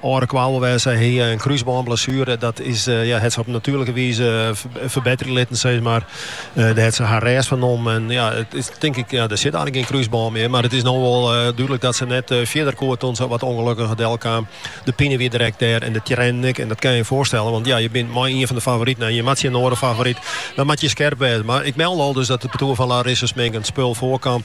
Oare kwaal wêze, se hie in krúsbânblessuere. Dat is ja, het se op natuerlike wize ferbetterje litten, sis mar. Der het se har rêst fan nommen. En ja, it is tink ik, ja, der sit earlik gjin krúsbân mear. Mar it is no wol dúdlik dat se net fierder koe doe't se wat ûngelukkiger delkaam. De pine wie drekt dêr en de triennen ek. En dat kinne je je foarstelle, want ja, je bint mei ien fan de favoriten en je moat tsjin in oare favoryt. Dan moat je skerp wêze. Mar ik melde al dus dat it partoer fan Larissa Smink in spul foarkaam.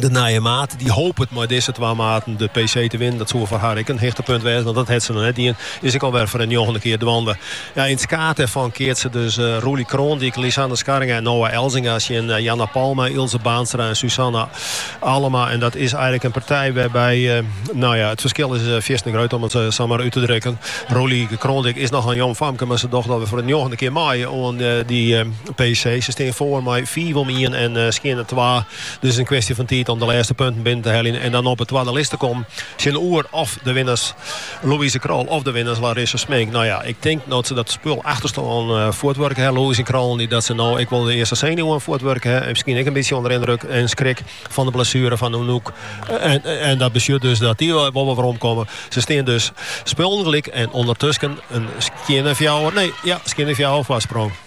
De nije maat die hopet mei dizze twa maten de PC te winnen. Dat soe foar har ek in hichtepunt wêze, want dat het se noch net dien. Is ek alwer foar de njoggende kear dwaande. Ja, yn it skaad dêrfan keatse dus eh, Roelie Kroondijk, Lisanne Scharringa en Noa Elzinga tsjin eh, Janna Palma, Ilse Baanstra en Suzanna Allema. En dat is eigenlik in partij wêrby't, eh, no ja, it ferskil is eh, fierstente grut om it eh, sa mar út te drukken. Roelie Kroondijk is noch in jong famke, mar se docht alwer foar de njoggende kear mei oan eh, dy eh, PC. Se stean foar mei fiif om ien en uh, skjinne twa. Dus in kwestje fan tiid om de lêste punten binnen te heljen. En dan op de twadde list te kommen tsjinoer of de winners Louise Krol of de winners Larissa Smink. No ja, ik tink no't se dat spul efterstân uh, fuortwurke ha, Louise Krol en dy, dat se no ek wol de earste senuwen fuortwurke ha. En miskien ek in bytsje ûnder yndruk en skrik fan de blessuere fan Anouk. En, en dat betsjut dus dat dy wol weromkomme. Se stean dus spullen gelyk en ûndertusken in skjinne nee, ja, skjinne foarsprong.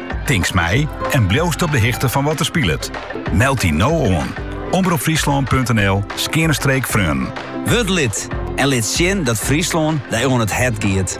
Tinks mei en bliuwst op de hichte fan wat der spilet? Meld dy no oan! omropfryslan.nl/freonen. Wurd lid en lit sjen dat Fryslân dy oan it hert giet.